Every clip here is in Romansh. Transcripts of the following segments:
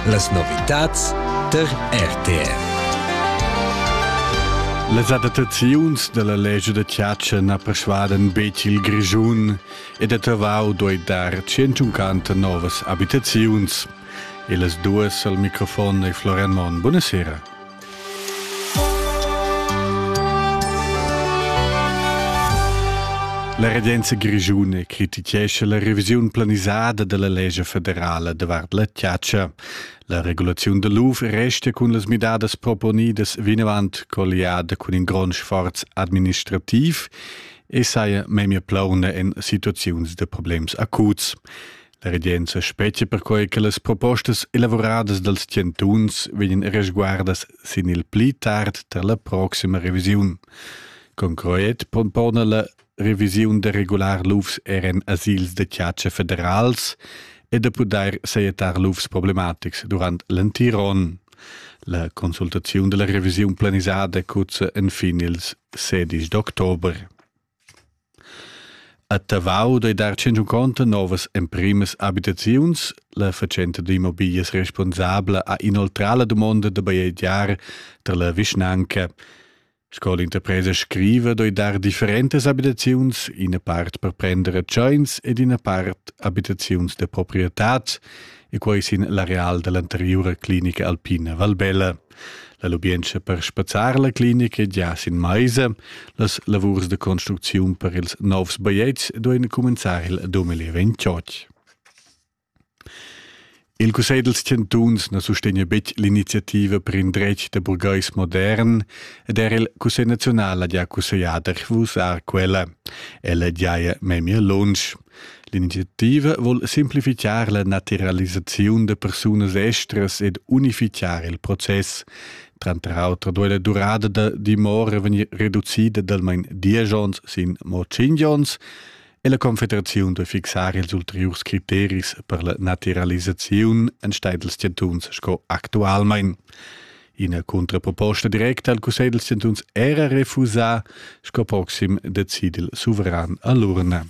Las novitads tar RTR. Las adattaziuns dalla legge da Chiaccia na persuaden betg il Grischun ed a Tavau doi dar 150 novas abitaziuns. E las duas al microfon e Florian Mon. Buonasera. La regenza grischuna critichescha la revisiun planisada dalla lescha federala davart la tiatscha. La regulaziun da l'UF resta cun las midadas proponidas vinavant colliada cun in grond sforz administrativ e saja memia plauna en situaziuns da problems acuts. La regenza spetga perquai che las propostas elavuradas dals chantuns vegnan resguardas sin il pli tard tar la proxima revisiun. Concret propona la revisiun da regular lufs er en asils da chatscha federals e da pudair sajettar lufs problematics durant l'entiron. La consultaziun della revisiun planisada cuzza enfin ils 16 d'october. A Tavau dei dar tschentunconta novas emprimas abitaziuns. La fatschenta d'immobiglias responsabla ha inoltrà la dumonda da bajegiar tar la vischnanca. Sco l'interpresa scriva, doi dar differentas abitaziuns, ina part per prender tscheins ed ina part abitaziuns da proprietad, e quai sin l'areal dall'anteriura clinica alpina Valbella. La lubientscha per spazzar la clinica gia sin maisa, las lavurs de construcziun per ils novs bajetgs duein cumenzar il 2028. Il Cussegl dels Chantuns na sustegna betg l'iniziativa per in dretg de burgais modern ed er il Cussegl nazional ha gia cussegliader vus a quella. Ella giaia memia lunsch. L'iniziativa vul simplifichar la naturalisaziun da persunas estras ed unifichar il process. Tranter auter duei la durada da dimora vegnir reducida dalmain diesch onns sin mo tschintg onns e la Confederaziun duei fixar ils ulteriurs criteris per la naturalisaziun enstagl dals chantuns sco actualmein. Ina contraproposta directa al cussegl dals chantuns era refusà, sco proxim decidi il suveran a l'urna.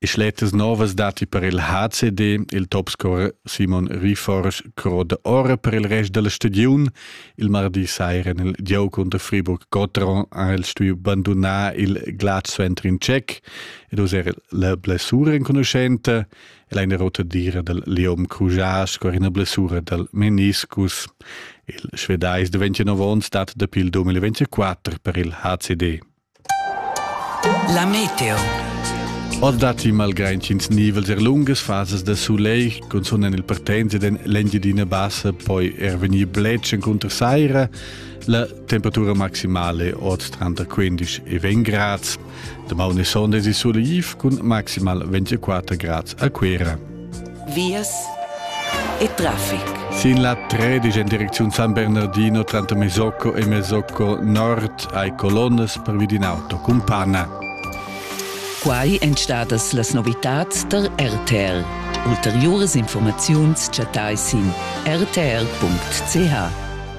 E schletas novas dati per il HCD, il topscorer Simon Riforsch croda ora per il rest della stagiun. Il mardi sera nel Dieu contro Friburg-Cotron ha il studio bandonar il Gladstw in Tschech ed user la blessura inconoscente. El è ina rotadira dal Leom Crujás sco ina blessura dal meniscus. Il svedais da 29 onns dat dapi il 2024 per il HCD. La meteo. Ord datti malgrà intgins nivels er lungas fasas da sulegl, cunzunt en il partenza den l'Engiadina Bassa poi er vegnir bletsch cunter saira. La temperatura maximale ord tranter 15 e 20 grads. Damaun e sonda si Surliv cun maximal 24 grads a Cuera. Vias e traffic. Sin la 13 in direcziun San Bernardino, tranto Mesocco e Mesocco Nord hai colonnas per vid in auto cun panna. Quai èn stadas las novitads tar RTL. Ulteriuras informaziuns chattai sin rtl.ch.